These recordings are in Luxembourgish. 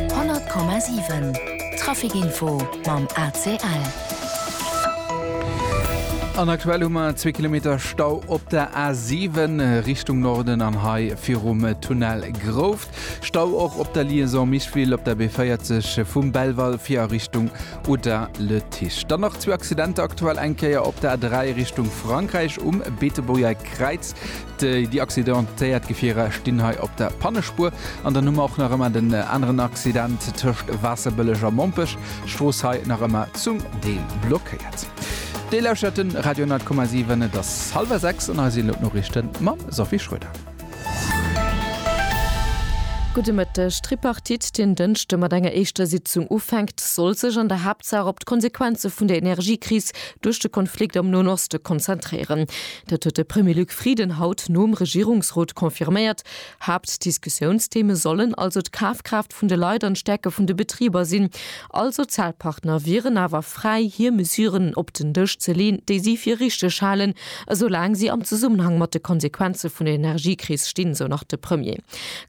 100,7 Traficinfo mam ACL. An aktuell hu mer zwee Kilometer Stau op der A7 Richtung Norden an Hai virum Tunnel Grouft. Stau och op der Liaison Micheville op der B40 vum Belval fir a Richtung Uda Le Tiche. Dann nach zwee Accidenter aktuell eng Kéier op der A3 Richtung Frankräich um Beetebuerger Kräiz. Déi accidentéiert Gefierer stinn hei op der Pannespuer an dann hu mer och nach ëmmer den aneren Accident tëscht Waasserbëlleg a Mompech. D'Strooss hei nach ëmmer zum Deel blockéiert. Dir lauschtert de Radio 100,7. Et ass hallwer sechs an hei sinn elo d'Noriichte mam Sophie Schröder. Gudde Mëtteg. D'Tripartite, déi en Dënschde mat enger éischter Sitzung ufänkt, soll sech an der Haaptsaach op d'Konsequenze vun der Energiekris duerch de Konflikt am Noen Oste konzentréieren. Dat huet de Premier Luc Frieden haut nom Regierungsrot confirméiert. Haaptdiskussiounstheme sollen also d'Kafkraaft vun de Leit an d'Stäerke vun de Betriber sinn. All Sozialpartner wieren awer fräi hir Mesuren op den Dësch ze leen, déi si fir richteg halen, esou laang si am Zesummenhang mat de Konsequenze vun der Energiekris stinn, sou nach de Premier.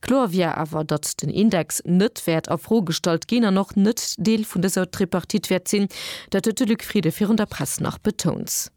Kloer wier awer, datt den Index net wäert a Fro gestallt ginn an och net Deel vun dëser Tripartite wäert sinn. Dat huet de Luc Frieden virun der Press nach betount.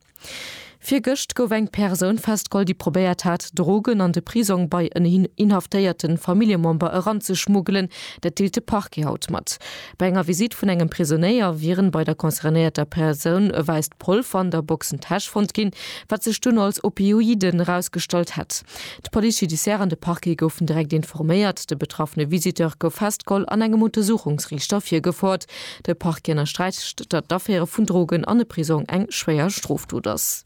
Virgëscht gouf eng Persoun festgeholl, déi probéiert hat, Drogen an de Prisong bei en inhaftéierte Familljemember eranzeschmuggelen. Dat deelt de Parquet haut mat. Bei enger Visitt vun engem Prisonéier wieren bei der concernéierter Persoun e wäisst Polver an der Boxentäsch fonnt ginn, wat sech dunn als Opioiden erausgestallt hätt. D'Police judiciaire an de Parquet goufen direkt informéiert. De betraffene Visiteur gouf festgeholl an engem Untersuchungsriichter virgefouert. De Parquet ënnersträicht, datt d'Affäre vun Drogen an e Prisong eng schwéier Strofdot ass.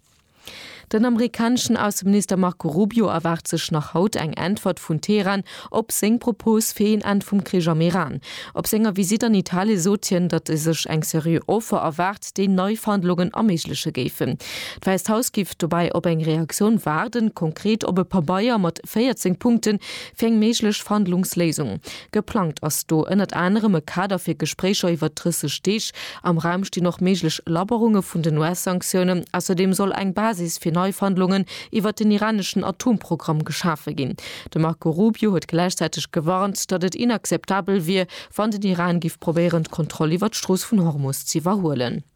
Den amerikaneschen Ausseminister Marco Rubio erwaart sech nach haut eng Äntwert vun Teheran op seng Propos fir een Enn vum Krich am Iran. Op senger Visitt an Italie sot hien, datt e sech eng seriö Offer erwaart, déi nei Verhandlungen erméigleche géifen. D'Wäisst Haus géif dobäi op eng Reaktioun waarden, konkret op e Pabeier mat 14 Punkte fir eng méiglech Verhandlungsléisung. Geplangt ass do ënnert anerem e Kader fir Gespréicher iwwert 30 Deeg. Am Raum stinn och méiglech Labberunge vun den US-Sanktiounen. Ausserdeem soll eng Basis fir nei Verhandlungen iwwert den iraneschen Atomprogramm geschafe ginn. De Marco Rubio huet gläichzäiteg gewarnt, datt et inakzeptabel wier, wann den Iran giff probéieren, d'Kontroll iwwert d'Strooss vun Hormus z'iwwerhuelen.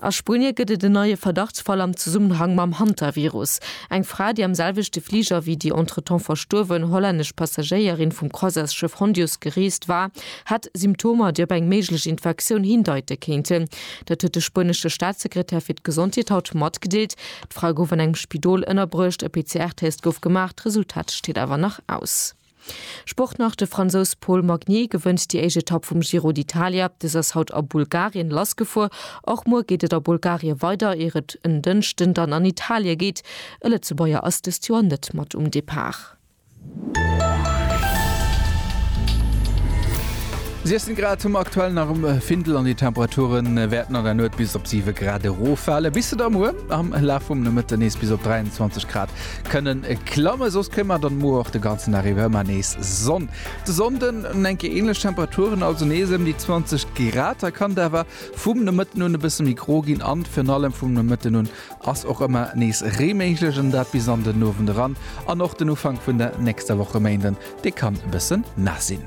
A Spunie gëtt et en neie Verdachtsfall am Zesummenhang mam Hantavirus. Eng Fra, déi am selwechte Fliger wéi déi entretemps verstuerwen hollännesch Passagéierin vum Croisaisschëff Hondius gereest war, hat Symptomer, déi op eng méiglech Infektioun hindeite kéinten. Dat huet de spuenesche Staatssekretär fir d'Gesondheet haut matgedeelt. D'Fra gouf an engem Spidol ënnerbruecht, e PCR-Test gouf gemaach, d'Resultat steet awer nach aus. Sport nach, De Fransous Paul Magnier gewënnt déi éischt Etapp vum Giro d'Italia. Dës ass haut a Bulgarien lassgefuer. Och muer geet et a Bulgarie weider, ier et en Dënschden dann an Italie geet. E Lëtzebuerger ass dëst Joer net mat um Depart. Siechzéng Grad hu mer aktuell nach um Findel an déi Temperature wäerten an der Nuet bis op siwe Grad erofale bis se da muer am Laf vum Nomëtte nees bis op 23 Grad Kënnen klammen, soss kréie mer dann muer och de ganzen Dag iwwer ëmmer nees Sonn. De Sonnden hunn enke änlech Temperaturen, also nees ëm déi 20 Grad. Hei kann et awer vum Nomëtten un e bësse méi gro ginn an virun allem vum Nomëtten un ass och ëmmer nees Ree méiglech an dat bis an den Owend eran. An och den Ufank vun der nächster Woch e Méinden, dee kann e bësse naass sinn.